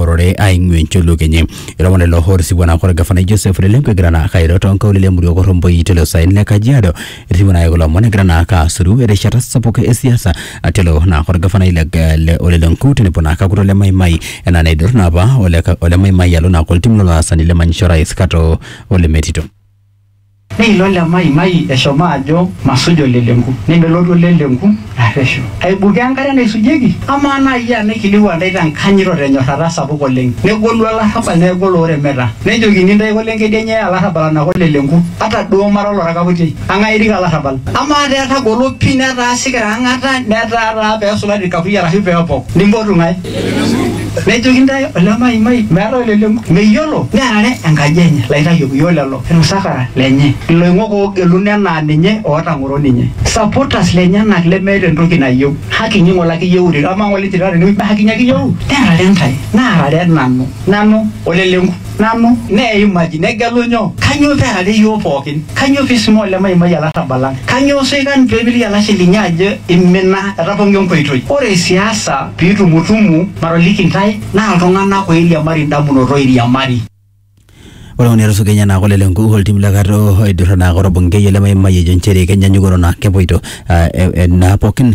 ororei aing'ua encholuok enye ilomon lelo otisipua naa kore gafanai Joseph Lelenko egira naa kairo too nkaulele emurua Korromboi tele saen le Kajiado etisipua naa kulo omon egira naa kaasuru erishata sapuk e siasa atelo naa kore gafanai le le ole Lenku tenebo naa kakulo le Maimai enaa neidur naa apa ole ka ole Maimai alo naa koltim lolaasani le manyisho orais Kato ole Metito. Neilo Lemaimai eshomo ajo masuj olelenku. Nemelotu olelenku arreshu. Aibukoo enkare naisujieki? Amaa naa iyie aa naikilikwaa intae te nkanyit o te nyorrata sapuk oleng. Negolu olarrabal neaku olooremeta. Nejokini intae ake olenkedi enye aa olarrabal anake olelenku. Ata duo mara oloraka putiai. Eng'ae erik olarrabal? Amaa taa etagolo pii netaa sikira ang'ata netaa taa pee esulari ilkakuyia arashu pee epok. Nimpotu ng'ae? Nejoki intae ole maimai meetae olelenku meyiolo nearare enkaji enye laitayok iyoo lelo ilmsafara lenye iloing'ok oogeluno enaa ninye ootang'oro ninye supporters lenyenak lemeeta entoki nayieu haki inyi ng'ole ake iyieurere amaa ng'ole itii taata enewueji mee haki inyi ake iyieu nearare intae naarare nanu nanu olelenku nanu, neimaki, negelu nyoo? Kanyoo pee earare iyiook pooki? Kanyoo pee eisuma olemaimai olarrabal lang? Kanyoo soikan pee epilie olashe linyi ajo eimina, etapong'o enkoitoi? Ore siasa pee itumutumu, matoliki intae, naa iltung'ana ooiriamari indamunot ooiriamari. Ore ng'ole etusuja enye naa kole le nkukuo o ltim le Kato oidurra naa kore Bungei olemaimai ejo nchere kenyanyuk ore naa kepoito naa pookin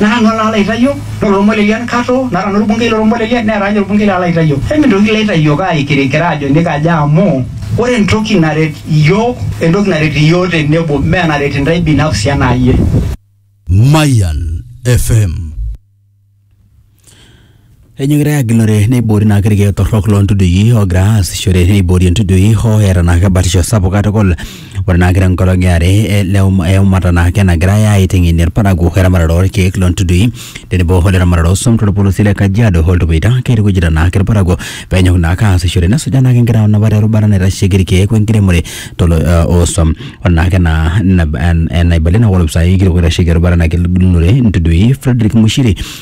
naa nanu alo aitayio ore ormoilel le nkato naa nanu orbungei loo lormoilel neeta ake ninye orbungei lalo aitayio emintoki iyie aitayio aikirikira ajo nikaja amu ore entoki naret iyiook entoki naret iyiook tenebo mee enaret intae binafsi enaa iyie. Mayian FM. Enyokita agilore neiboori naa irkeek torrok loo ntudui oogira aasishore neiboori entudui hoo eeta naake batisho sapuk katukul. Ore naake tenkolong e are ele eumata naake nagirai aiteng'enie irparakuo eramatare oo rkeek loo ntudui tenebo ole ramatare oo swam to lpolosie le Kajiado o Ltupuita. Keitukujita naake irparakuo peenyok naake aasishore nesujaa naake nkera napa te rubata naitasheki irkeek we nkiremore to lo oo swam. Ore naake ena enaibalie naa ore opisai kitok oitasheki erubata nagilunore ntudui Fredrick Mushiri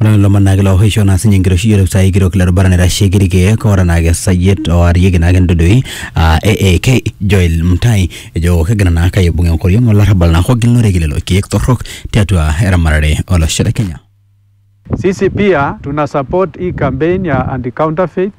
Ore lelo omon naa kelo aisho naa sinye enkiroshi yioloti sai kitok le rubata naitasheki irkeek ora naa ake sayiet oarieki naa ake ntudui aa AAK Joel Mutai ejo kegira naa ake aibung enkoriong olarrabal naa kogilunore lelo keek torrok tiatua eramatare olosho le Kenya. Sisi pia tuna support hii campaign ya anti counterfeit